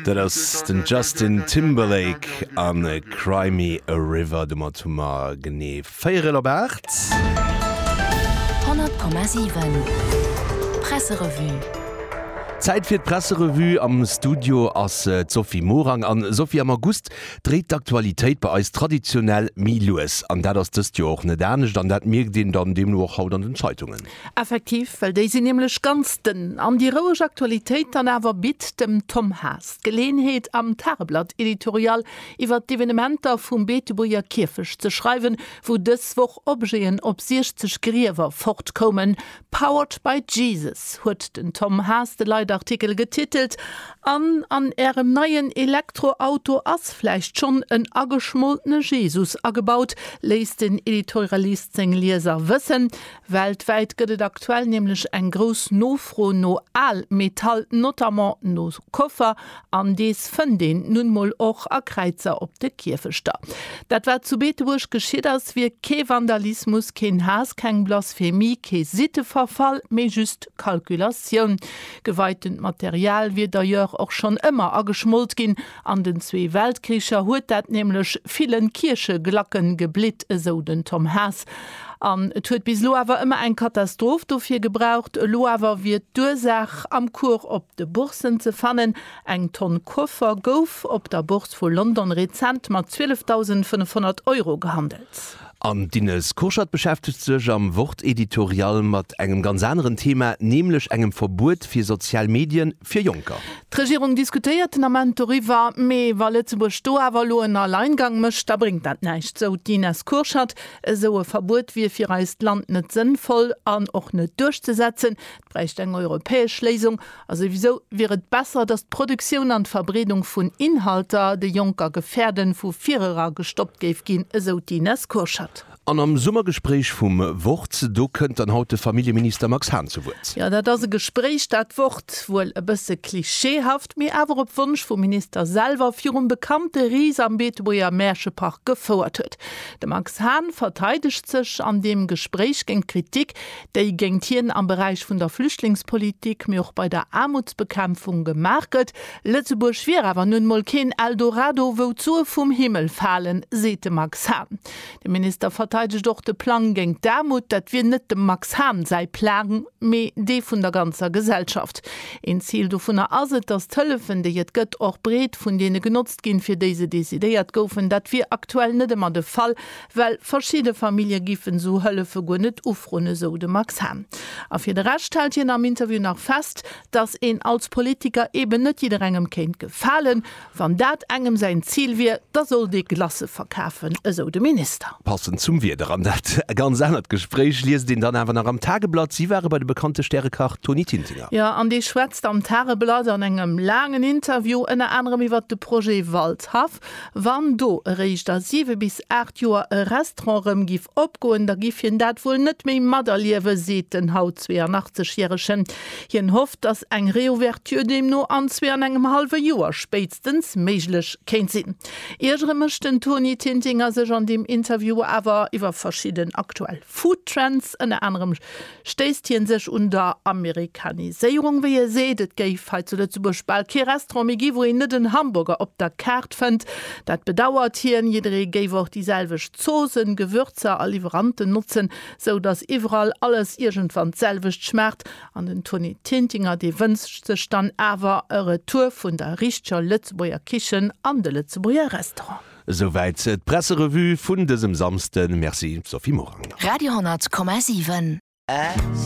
Dat ass den Justin Timberlake a Cry me a river. Domat hu mer genee véierel op aacht. 100,7 Presserevue. Zäit fir d'Presserevue. Am Studio ass d'Sophie Morang. A Sophie, am August dréit d'Aktualitéit bei eis traditionell méi lues an dat ass dëst Joer och net anescht. An dat mierkt een dann deemno och haut an den Zeitungen. Effektiv, well déi sinn nämlech ganz dënn an déi roueg Aktualitéit dann awer bitt dem Tom Haas d'Geleeënheet am Tageblatt Editorial iwwer d'Evenementer vum Beetebuerger Kierfecht ze schreiwen, wou dës Woch Objeten op 60 Griewer fortkoumen. Powered by Jesus huet den Tom Haas de Leitartikel getitelt an an Ärem neien Elektroauto ass vläicht schonn en ageschmoltene Jesus agebaut, léisst den Editorialist seng Lieser wëssen. Weltwäit gëtt et aktuell nämlech eng grouss Nofro no Al-Metall, notamment no Koffer, an dees fënnt een nun mol och a Kräizer op de Kierfechter. Dat wat zu Beetebuerg geschitt ass, wier kee Vandalismus, keen Haass, keng Blasphemie, kee Sitteverfall, mee just Kalkulatioun. Geweitend Material wier d'ailleurs och schonn ëmmer ageschmolt ginn, An den zwee Weltkricher huet dat nämlech villen Kiercheglacken geblitt, esou den Tom Haas. An et huet bis elo awer ëmmer eng Katastroph dofir gebraucht. Elo awer wier d'Ursaach am Cours op de Bourssen ze fannen. Eng Tonn Koffer gouf op der Bourse vu London rezent mat 12.500 Euro gehandelt. An d'Ines Kurschat beschäftegt sech am Wort-Editorial mat engem ganz aneren Thema, nämlech engem Verbuet fir sozial Medien fir Jonker. D'Regierung diskutéiert den Ament doriwwer, mee wa Lëtzebuerg do awer elo en Alleingang mécht, da bréngt dat näischt, sou d'Ines Kurschat. Esou e Verbuet wier fir eist Land net sënnvoll an och net duerchzesetzen. Et bräicht eng europäesch Léisung, a souwisou wier et besser, datt d'Produktioun an d'Verbreedung vun Inhalter, déi Jonker gefäerden, vu virera gestoppt géif ginn, esou d'Ines Kurschat. An am Summergespréich vum Wort, do kënnt dann haut de Familljeminister Max Hahn zu Wuert. Jo, dat ass e Gespréich, dat Wort. Wuel e bësse klischeehaft, mee awer op Wonsch vum Minister selwer virum bekannte Ris am Beetebuerger Mäerchepark gefouert huet. De Max Hahn verteidegt sech an deem Gespréich géint d'Kritik, déi géingt hien am Beräich vun der Flüchtlingspolitik, mee och bei der Aarmutsbekämpfung gemaach gëtt. Lëtzebuerg wier awer nun emol keen Eldorado, wou d'Sue vum Himmel falen, seet de Max Hahn. De Minister verteidegt och de Plang géingt d'Aarmut. Dat wier net dem Max Hahn säi Plang, mee dee vun der ganzer Gesellschaft. Een Zil dovunner ass et, datt d'Hëllefen, déi et gëtt, och breet vun deene genotzt ginn, fir déi se decidéiert goufen. Dat wier aktuell net ëmmer de Fall, Well verschidde Famillje giffen esou Hëllefe guer net ufroen, esou de Max Hahn. A fir de Rescht hält hien am Interview nach fest, datt een als Politiker eben net jidderengem kéint gefalen. Wann dat engem säin Zil wier, da sollt ee Glacë verkafen, esou de Minister. Passend zum Wieder an dat ganz anert Gespréich liest een dann awer nach am Tageblatt, si ware bei de bekannte Stärekach Toni Tintinger. Jo, an dee schwätzt am Tageblatt an engem laangen Interview ënner anerem iwwer de Projet Waldhaff, Wann do eréischt a 7 bis 8 Joer e Restaurant erëm giff opgoen, da giff hien dat wuel net méi materliewen, seet den haut 82 järegen. Hien hofft, datt eng Reouverture deemno an zwee an engem hallwe Joer spéitstens méiglech kéint sinn. Iergere mécht den Toni Tintinger sech an deem Interview awer iwwer verschidden aktuell Food-Trends, ënner anerem. stéisst hie sech un der Amerikaniséierung, wéi e seet, et géif hei zu Lëtzebuerg bal kee Restaurant méi gi wou een net en Hamburger op der Kaart fënnt. Dat bedauert hien. Jidderee géif och déi selwecht Zoosen, Gewürzer a Liwweranten notzen, sou datt iwwerall alles iergendwann d'selwecht schmaacht. An den Toni Tintinger, dee wënscht sech dann awer e Retour vun der richteger Lëtzebuerger Kichen an de Lëtzebuerger Restaurant. Esouwäit d'Presserevue vun dësem Samsden. Merci Sophie Morang nach. Radio 10,7.